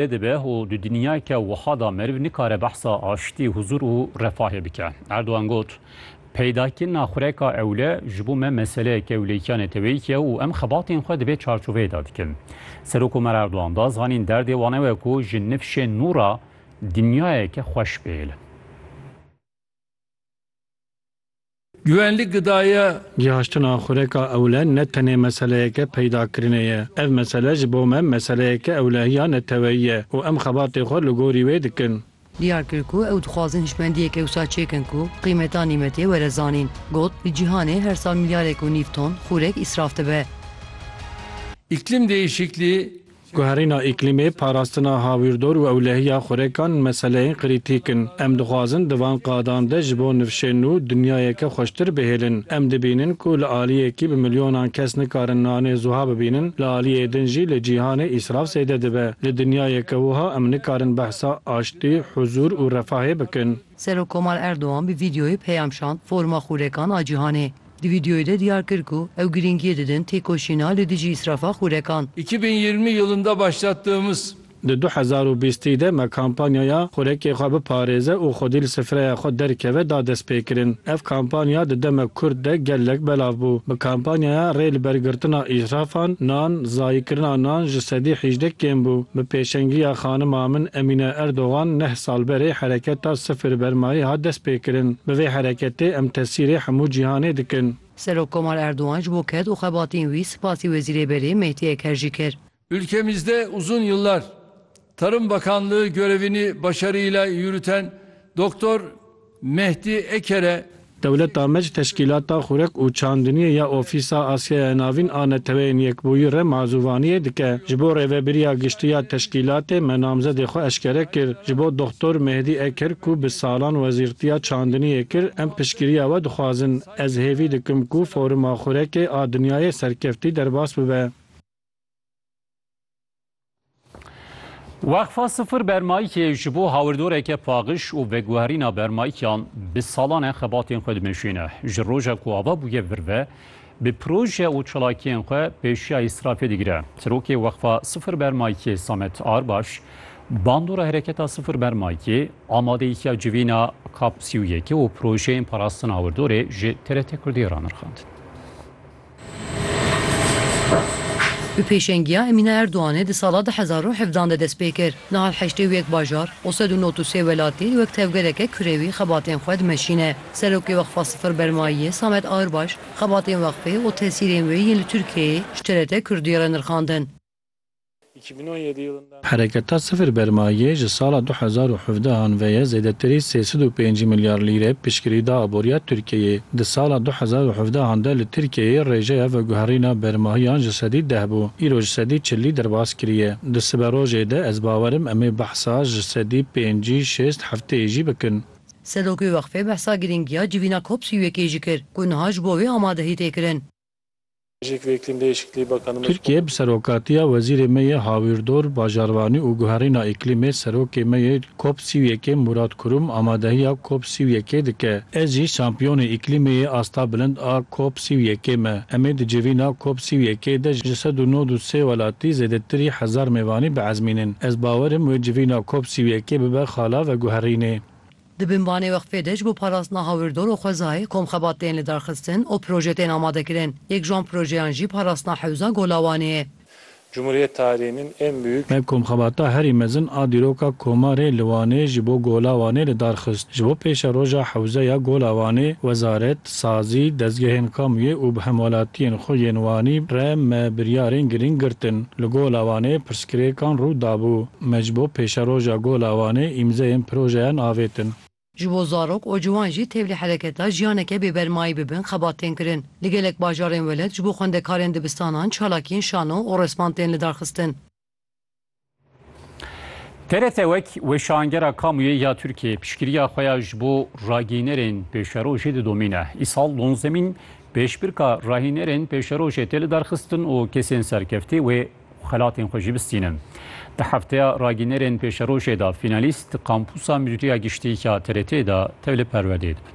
Tê dibe û di dinyayeke wiha de meriv nikare behsa aştî, huzûr û refahê bike. Erdogan got, Peydakirina xureka ewle ji bo me meseleyeke ewleyîtiya neteweyî ye û em xebatên xwe di vê çarçoveyê de dikin. Serokomer Erdogan da zanîn derdê wan ew e ku ji nifşên nû re dinyayeke xweş bihêlin. Güvenlik Gıdaya. Cîhaştina xureka ewle ne tenê meseleyeke peydakirinê ye. Ev mesele ji bo me meseleyeke ewlehiya neteweyî ye û em xebatê xwe li gorî wê dikin. Diyar kir ku ew dixwazin hişmendiyek ew sal çêkin ku qîmeta nîmetê were zanîn. Got, Li cîhanê her sal milyarek û nîv ton xurek îsraf dibe. Îklim Değişikliği Guherîna îklîmê, parastina hawîrdor û ewlehiya xurekan meseleyên krîtîk in. Em dixwazin di van qadan de ji bo nifşên nû dinyayeke xweştir bihêlin. Em dibînin ku li aliyekî bi milyonan kes nikarin nanê zuha bibînin, li aliyê din jî li cîhanê îsraf zêde dibe. Li dinyayeke wiha em nikarin behsa aştî, huzûr û refahê bikin. Serokkomar Erdogan bi vîdeoyê peyam şand foruma xurekan a cîhanê. Di vîdeoyê de diyar kir ku ew girîngiyê didin têkoşîna li dijî îsrafa xûrekan. İki bin yirmi yılında başlattığımız. Di du hezar û bîstî de me kampanyaya Xurekê xwe biparêze û xwedî li sifreya xwe derkeve da destpêkirin. Ev kampanya di demek kurt de gelek belav bû. Bi kampanyaya rê li ber girtina îsrafan, nan, zayîkirina nan ji sedî hîjdeh kêm bû. Bi pêşengiya xanima min Emîne Erdogan neh. Salberê Hereketa Sifir Bermayê hat destpêkirin. Bi vê hereketê em tesîrê hemû cîhanê dikin. Serokkomar Erdogan ji bo ked û xebatên wî spasî Wezîrê Berê Mehdî Eker jî kir. Ülkemizde uzun yıllar Tarım Bakanlığı görevini başarıyla yürüten Dr. Mehdî Ekere, Dewleta me ji Teşkîlata Xurek û Çandiniyê ya Ofîsa Asyaya Navîn a Neteweyên Yekbûyî re mazûvaniyê dike. Ji bo Rêvebiriya Giştî ya Teşkîlatê me namzedê xwe eşkere kir. Ji bo Doxtor Mehdî Eker ku bi salan Wezîrtiya Çandiniyê kir, em piştgiriya we dixwazin. Ez hêvî dikim ku Foruma Xurekê a Dinyayê serkeftî derbas bibe. Weqfa Sifir Bermayîkê ji bo hawirdoreke paxiş û veguherîna bermayîkan bi salan e xebatên xwe dimeşîne. Ji roja ku ava bûye vir ve, bi proje û çalakiyên xwe pêşiya îsrafê digire. Sirokê Weqfa Sifir Bermayîkê Samet Arbaş, bandora Hereketa Sifir Bermayîkê, amadeyîtiya civîna kap sî û yekê û projeyên parastina hawirdorê ji TRT Kurdiyê ranirxand. Bi pêşengiya Emîne Erdoganê di sala du hezar û hevdan de dest pê kir. Niha li heştê û yek bajar û sed û nod û sê welatî wek tevgereke kurewî xebatên xwe dimeşîne. Serokê Weqfa Sifir Bermayiyê Samet Ağırbaş xebatên weqfê û tesîrên wê yên li Tirkiyeyê ji TRT Kurdî re nirxandin. Hereketa Sifir Bermayê ji sala du hezar û hevdeh an ve ye zêdetirî sê sed û pêncî milyar lîre piştgirî da aboriya Tirkiyeyê. Di sala du hezar û hevdeh an de li Tirkiyeyê rêjeya veguherîna bermahiyan ji sedî deh bû, îro ji sedî çilî derbas kiriye. Di siberojê de ez bawer im em ê behsa ji sedî pêncî, şêst, hefteyê jî bikin. Serokê Weqfê behsa girîngiya civîna COP sî û yekê jî kir ku niha ji bo wê amadehî tê kirin. Tirkiye bi serokatiya wezîrê me yê Hawîrdor, Bajarvanî û Guherîna Îklîmê serokê me yê Cop sî û yekê Mûrat Kurum amadehiya Cop sî û yekê dike. Ez jî şampiyonê îklîmê yê asta bilind a Cop sî û yekê me. Em ê di civîna Cop sî û yekê de ji sed û nod û sê welatî zêdetirî hezar mêvanî biezmînin. Ez bawerim wê civîna Cop sî û yekê bibe xala veguherînê. Di binvanê weqfê de ji bo parastina hawirdor û xwezayê kom xebat tên lidarxistin û proje tên amadekirin. Yek ji wan projeyan jî parastina hewza Golawanê ye. Cumhuriyet tarihinin en büyük. Ev komxebata herî mezin a dîroka koma rê li Wanê ji bo Golawanê lidarxist. Ji bo pêşeroja hewzeya Golawanê, wezaret, Sazî, dezgehên kamuyê û bi hemwelatiyên xwe yên Wanî re me biryarên girîng girtin. Li Gola Wanê pirsgirêkan rû dabû. Me ji bo pêşeroja Gola Wanê îmzeyên projeyan avêtin. Ji bo zarok û ciwan jî tevlî hereketa jiyaneke bêbermayî bibin xebat tên kirin. Li gelek bajarên welat ji bo xwendekarên dibistanan çalakiyên şano û resman tên lidarxistin. TRT wek weşangera kamuyê ya Tirkiyeyê piştgiriya xwe ya ji bo ragînerên pêşerojê didomîne. Îsal donzemîn pêşbirka rahînerên pêşerojê tê lidarxistin û kesên serkeftî wê xelatên xwe jî bistînin. Di hefteya ragînerên pêşerojê de fînalîst di kampûsa Mûdiriya Giştî ya TRT'ê de tevli perwerdeyê dibin.